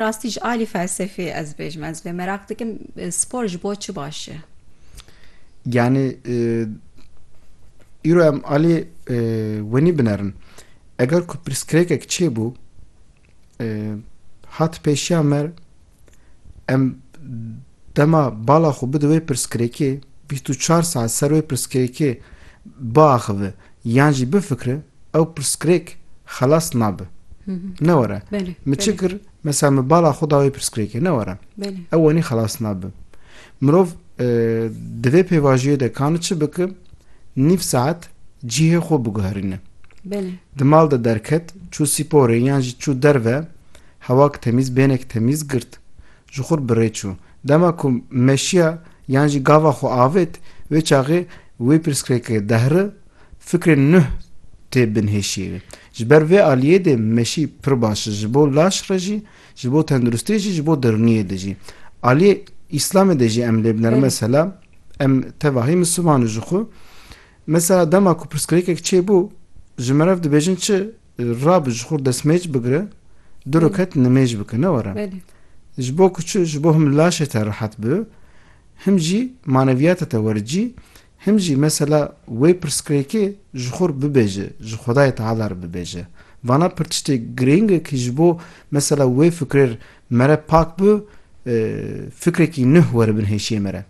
Rastî ji alî felsefê ez bêjim ez vê meraq dikim spor ji bo çi baş e? Yanî îro em alî wenî binerin. Eger ku pirsgirêkek çêbû hat pêşiya me em Dema bala xwe bide wê pirsgirêkê, bîst û çar saet ser wê pirsgirêkê biaxive yan jî bifikire, ew pirsgirêk xelas nabe. Ne were, min çi kir, mesela min bala xwe da wê pirsgirêkê, ne were. Ew wenî xelas nabe. Mirov di vê pêvajiyê de ka ne çi bike, nîv saet cihê xwe biguherîne. Di mal de derket, çû sîporê yan jî çû derve, hewak temîz, bênek temîz girt. Ji xwe bi rê çû. Dema ku meşiya yan jî gava xwe avêt, wê çaxê wê pirsgirêkê dehri fikrên nuh tê binhêşiyê wê. Ji ber vê aliyê dê meşî pir baş e, ji bo laş re jî, ji bo tenduristiyê jî, ji bo dirniyê de jî. Aliyê îslamê de jî em lê biner. Mesela em tevahî misiman in ji xwe. Mesela dema ku pirsgirêkek çêbû, ji meriv dibêjin çi? Rabe ji xwe destmêc bigire, du rekat nimêj bike ne were. Ji bo ku çi, ji bo him laşê te rehet bi, him jî maneviyata te wericî, him jî mesela wê pirsgirêkê ji xwe re bibêje, ji Xwedayê Teala re bibêje. Vana pir tiştê girîng e ku ji bo mesela wê fikirê re me re pak bi, fikrekî nuh were bin hêşiyê me re.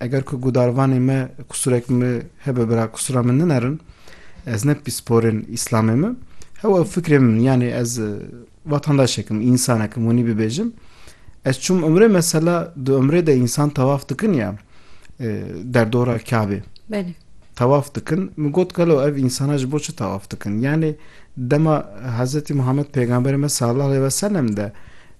Eger ku gudarvanê me qusûrek me hebe bira qusûra min ninerin ez ne pîsporên îslamê me hew ew fikrê min yanê ez vatandaşekim însanekim winî bibêjim ez çûm umrê mesela di umrê de însan tewaf dikin ya derdora kabê Belê. tewaf dikin min got gelo ev însana ji bo çi tewaf dikin yanê dema Hezretî Muhammed pêgamberê me sallallahu aleyh ve sellem de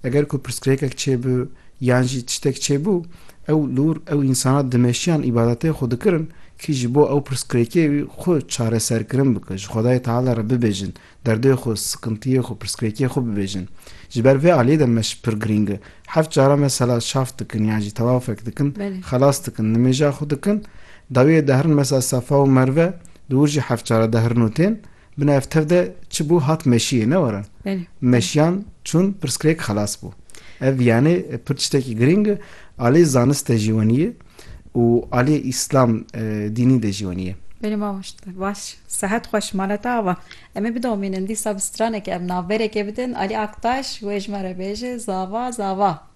eger ku pirsgirêkek çêbi Yan jî tiştek çêbû, ew lûr, ew însanan dimeşiyan îbadetên xwe dikirin, kî ji bo ew pirsgirêkê wî xwe çareserkirin bike, ji Xwedayê Teala re bibêjin, derdê xwe, sikintiyê xwe, pirsgirêkê xwe bibêjin. Ji ber vê aliyê de me ji pir girîng e. Heft caran mesela şaf dikin yan jî tewafek dikin, xelas dikin, nimêja xwe dikin, dawiyê de herin mesela Sefa û Merve, dûr jî heft caran de herin û tên, Bi nav tev de çi bû hat meşiyê ne were? Meşiyan çûn pirsgirêk xelas bû. Ev yanê pir tiştekî girîng e aliyê zanist de jî wenî ye û aliyê îslam dînî de jî wenî ye. Belê mamoste baş sehet xweş mala te ava. Em ê bidomînin dîsa bi straneke em navberekê bidin Alî Aktaş wê ji me re bêje zava zava.